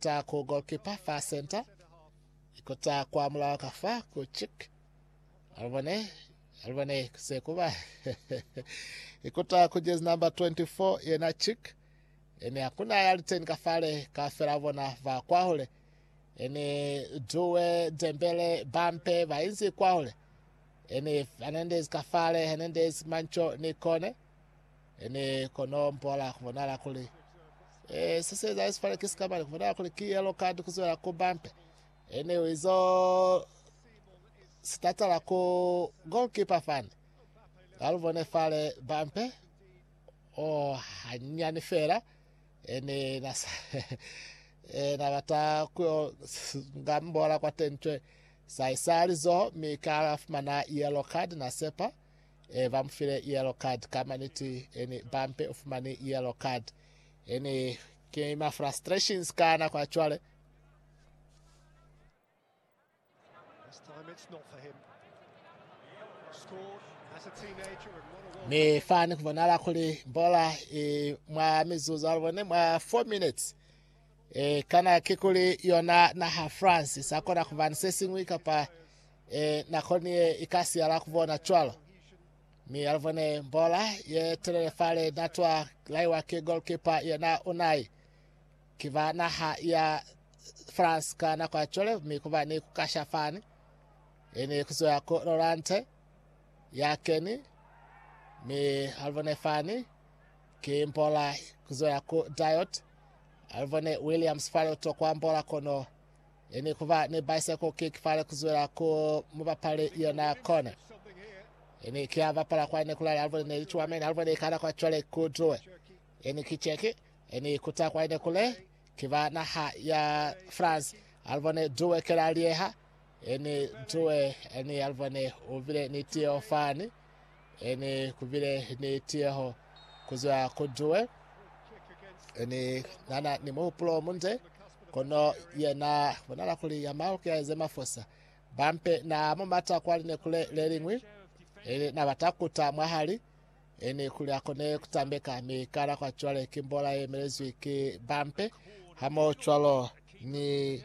Kota ku goalkeeper fa center. Ikota kwa mulao ka fa ku chick. Alibone, alibone se kuba. Ikota ku jersey number 24 yena chick. Ene hakuna ya liteni ka fale ka fela bona va kwahule. Ene Due, Dembele, Bampe ba inzi kwahule. Ene Hernandez ka fale, Hernandez, Mancho ni Kone. Ene kono mpola kubonala kuli eh, se sieza Yesu fale ki sikamani, kubonala kuli ki yellow card kuzwela ku bumper. Ene uizo sitatala ku goalkeeper fani. Alubone fale bumper oh hanyani fela ene nasa eh, nabata kuyo ngambola kwa tentwe saisali zoho mikala fumana yellow card nasepa E ba mu file yellow card ka maniti eni ba mpe u fumani yellow card eni ke ma frustrations ka nako ya cwale mi fani kubonala kuli bola e, mwa mizuzu alubone mwa 4 minutes e, kana ke kuli yona naha france sakona kubani se singwi kapa E, nako ni ye i ka siyala ku bona cwalo. Mi ya lubone mbola ye telele fale na twa laiwa ki goalkeeper yena Unai. Ki ba naha ya France ka nako ya cwale, mi kuba ni ku kasha fani. E ni ku zoya ku Lorante, ya keni, mi alubone fani, ki mbola ku zoya ku Diot, alubone Williams fale utokwa mbola kono Ye ni kuba ni bicycle kick fale kuzwela ku mubapali yona kona. Ye ni kia bapala kwa nekulala alubone ne licuwa mene alubone ikana kwa cwale kuduwe. Ye ni ki cheki ye ni kuta kwa ine kule kiba naha ya France alubone duwe kela lieha ye ni duwe ni alubone ubile ni tiyo fani. Ene kubile ni tiyeho kuzwa ku Due. Ene nana ni muhupulo munde, kono yena bonala kuli ya mahuki ya ze mafosa. Bampe na mumata kwa linekule le lingwi, ene na bata kuta mwahali, ene kuli akone kutambeka, mi kana kwa cwale ki mbola ye melezwi ki bampe, hamo cwalo ni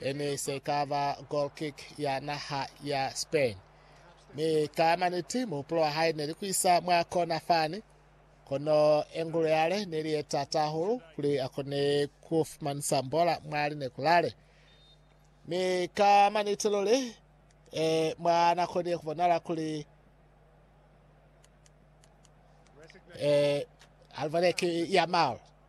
E ne se ka ba goalkick ya naha ya Spain, mi ka maniti muhupulo wa hae ne li ku isa mwa kona fani, kono engulo yale ne li ye tata hahulu kuli a kone ku fumanisa mbola mwa lineku lale. Mi ka maniti luli, e, mwa na konile ku bonala kuli e, Alvarez ki Yamal.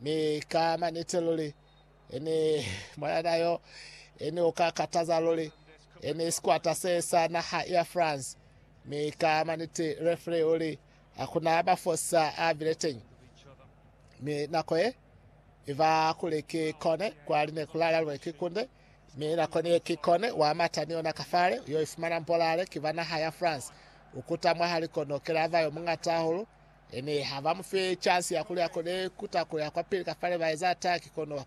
Mi ka manite luli, ini mwanana yo, ini uka kataza luli, ini sikwata se sa naha ya France. Mi ka manite referee uli, Hakuna mafosa a bileteñi. Mi nako ye, iva kuli ki kone, kwa line kulala lune ki kunde, mi nako niye ki kone, wa mata ni yona kafale, uyo ifumana mbolale, ki ba naha ya France. Ukuta mwahali kono, kelava yo mungata hahulu, Ene ha ba mu fe chance ya kuli a kone kuta kuya kwapili kafale ba eza ataki kono